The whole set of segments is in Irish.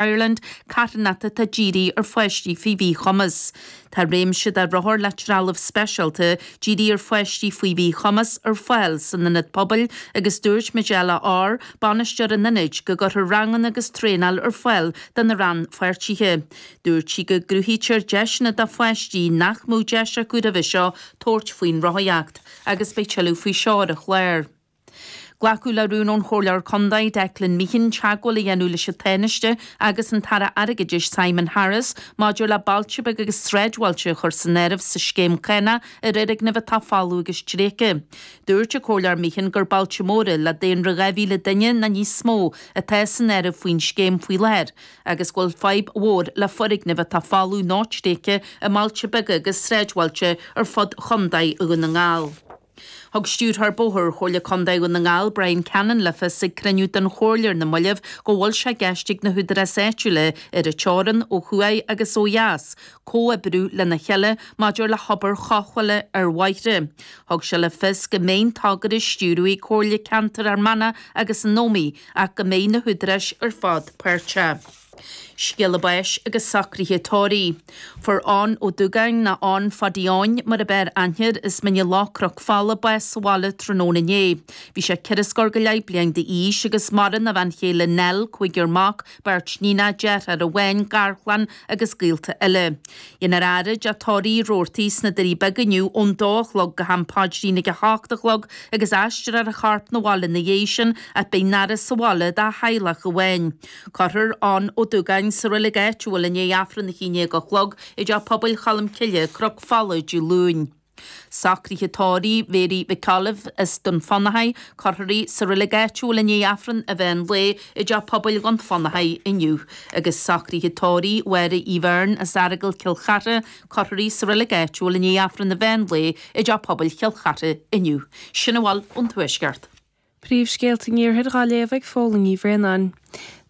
Ireland, carthanata atá dírithe ar pháistí faoi mhíchumas. Tá réimse de rothair le trealamh speisialta dírithe ar pháistí faoi mhíchumas ar fáil san Ionad Pobail agus dúirt Majella Orr, bainisteoir an Ionaid, go gcuirfear ranganna agus traenáil ar fáil do na rannpháirtithe. Dúirt sí go gcruthaítear deiseanna do pháistí nach mbeadh deis acu roimhe seo tabhairt faoin rothaíocht agus beidh tuilleadh faoi seo ar an chlár. Glacadh le rún ón Chomhairleoir Contae, Declan Meehan, teagmháil a dhéanamh leis an Tánaiste agus an tAire Airgeadais, Simon Harris, maidir le bailte beaga agus sráidbhailte a chur san áireamh sa scéim cánach ar fhoirgnimh atá folamh agus tréigthe. Dúirt an Comhairleoir Meehan gur bailte móra, le daonra 2,000 duine nó níos mó, atá san áireamh faoin scéim faoi láthair agus go bhfuil fadhb mhór le foirgnimh atá folamh nó tréigthe i mbailte beaga agus sráidbhailte ar fud Chontae Dhún na nGall. Thug Stiúrthóir Bóithre Chomhairle Contae Dhún na nGall, Brian Cannon, le fios ag cruinniú den Chomhairle ar na mallaibh go bhfuil sé i gceist ag na húdaráis áitiúla ar an teorann ó thuaidh agus ó dheas comhoibriú lena chéile maidir le hobair chaiscphoill ar bhóithre. Thug sé le fios go mbeidh an togra á stiúradh ag Comhairle Ceantair Fhear Manach agus na hÓmaí ach go mbeidh na húdaráis ar fad páirteach. Scéala báis agus socruithe tórraimh. Fuair Eoghan Ó Dúgáin nó Eoghan Phadaí Eoin mar ab fhearr aithne air as Mín an Chladaigh, Cnoc Fola, bás sa bhaile tráthnóna inné. Bhí sé ceithre scór go leith bliain d'aois agus maireann a bhean chéile Nell, cúigear mac, beirt níonacha, deartháir amháin, garchlann agus gaolta eile. Déanfar faire i dTeach Tórraimh Roarty sna Doirí Beaga inniu ón dó a chlog go ham paidrín ag a hocht a chlog agus aistreofar a chorp 'na bhaile ina dhiaidh sin ach beidh an fhaire sa bhaile dá theaghlach amháin. Cuirfear Eoghan Ó Dúgáin sa reilig áitiúil i ndiaidh Aifreann a haon déag a chlog i dTeach Pobail Cholm Cille, Cnoc Fola, Dé Luain. Socruithe tórraimh Mary McCollum as Dún Fionnachaidh, cuirfear í sa reilig áitiúil i ndiaidh Aifreann an mheán lae i dTeach Pobail Dhún Fionnachaidh inniu agus socruithe tórraimh Mháire Uí Bheirn as Iorgal, Cill Charthaigh, cuirfear í sa reilig áitiúil i ndiaidh Aifreann an mheán lae i dTeach Pobail Chill Charthaigh inniu. Sin a bhfuil ón Tuaisceart. Príomhscéalta an Iarthair dhá léamh ag Póilín Ní Bhraonáin.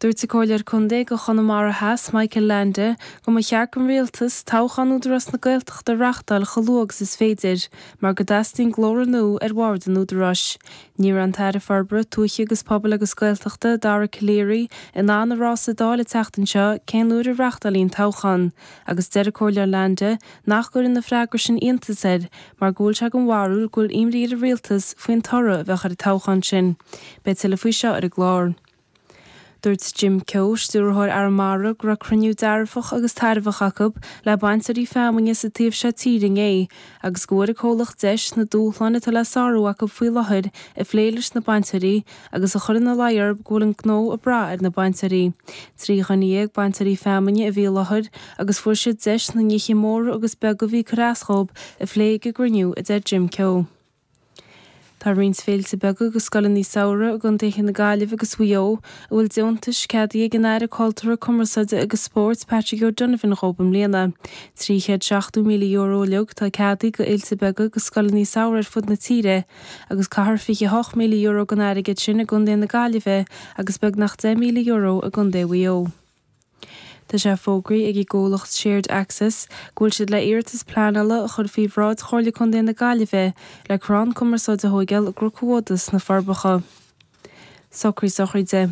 Dúirt an Comhairleoir Contae do Chonamara Theas, Michael Leainde, go mba cheart don Rialtas toghchán Údarás na Gaeltachta a reachtáil chomh luath agus is féidir mar go dteastaíonn glór nua ar Bhord an Údaráis. Ní raibh an tAire Forbartha Tuaithe agus Pobail agus Gaeltachta, Dara Calleary, in ann a rá sa Dáil an tseachtain seo cén uair a reachtálfaí an toghchán. agus deir an Comhairleoir Leainde nach gcuireann an freagra sin iontas air mar go bhfuil sé den bharúil go bhfuil imní ar an Rialtas faoin toradh a bheadh ar an toghchán sin. Beidh tuilleadh faoi seo ar an gclár. Dúirt Jim Keogh, Stiúrthóir Arramara, go raibh cruinniú dearfach agus tairbheach acu le bainteoirí feamainne sa taobh seo tíre inné agus go bhfuair an comhlacht deis na dúshláin atá le sárú acu faoi láthair a phlé leis na bainteoirí agus a chur ina luí orthub go bhfuil an gnó ag brath ar na bainteoirí. Trí dhuine dhéag bainteoirí feamainne a bhí i láthair agus fuair siad deis na nithe móra agus beaga a bhí ag cur as dhóib a phlé ag an gcruinniú, a deir Jim Keogh. Tá roinnt féilte beaga agus scoileanna samhraidh i gcontaetha na Gaillimhe agus Mhaigh Eo a bhfuil deontais ceadaithe ag an Aire Cultúrtha, Cumarsáide agus Spóirt, Patrick O'Donovan dhóib i mbliana. €370,000 uilig atá ceadaithe go fhéilte beaga agus scoileanna samhraidh ar fud na tíre agus caithfear €28,000 den airgead sin i gcontae na Gaillimhe agus beagnach €10,000 i gcontae Mhaigh Eo. Tá sé fógraithe ag an gcomhlacht Shared Access go bhfuil siad le iarratas pleanála a chur faoi bhráid Chomhairle Contae na Gaillimhe le crann cumarsáide a thóigeáil i gCnocán an Bhodaigh sna Forbacha. Socruithe sochraide.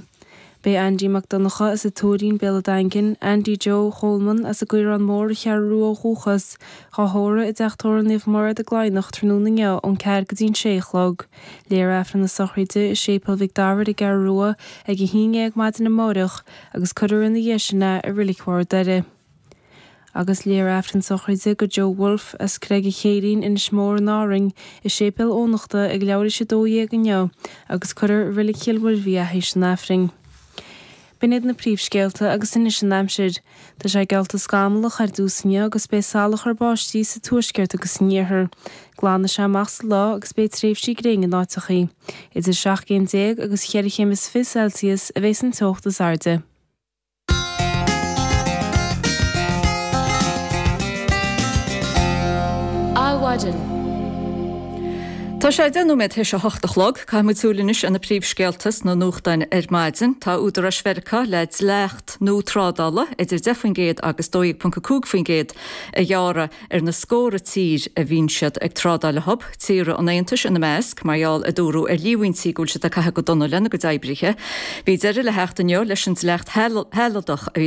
Beidh Aindí Mac Donnacha as an Tuairín, Béal an Daingin, Aindí Joe Choleman as an gCaorán Mór An Cheathrú Rua ó dhúchas, dhá thórramh i dTeach Tórraimh Naomh Mairéad i gCladhnach tráthnóna inniu ón ceathair go dtí an sé a chlog. Léifear Aifreann na sochraide i Séipéal Mhic Dara ar an gCeathrú Rua ag a haon dhéag maidin amáireach. agus cuirfear ina dhiaidh sin é i Reilig Bharr an Doire. Agus léifear aifreann na sochraide go Joe Woulfe as Creig an Chéirín, Inis Mór, in Árainn, i Séipéal Eoghanachta ag leathuair th'éis a 12 inniu agus cuirfear i Reilig Chill Mhuirbhigh é th'éis an aifrinn. B'in iad na príomhscéalta agus anois an aimsir. Tá sé geallta scamallach ar dtús inniu agus beidh salachar báistí sa tuaisceart agus san iarthar. Glanfaidh sé amach sa lá agus beidh tréimhsí gréine in áiteacha. Idir 17 céim agus 4 chéim is fiche Celsius a bheas an teocht is airde. Adhmhaidin. Tá sé 10 nóiméad th'éis a hocht a chlog. Caithfidh muid súil anois ar na príomhscéalta sna nuachtáin ar maidin. Tá Údaráis Mheiriceá le dleacht. nua trádála idir 10 faoin gcéad agus 12.5 faoin gcéad a ghearradh ar na scóra tír a bhíonn siad ag trádáil leothub, tíortha an Aontais ina measc, mar gheall, a dúradh, ar líomhaintí go bhfuil siad ag caitheamh go dona lena gcuid oibrithe. Bhí deireadh le theacht inniu leis an dleacht shealadach a bhí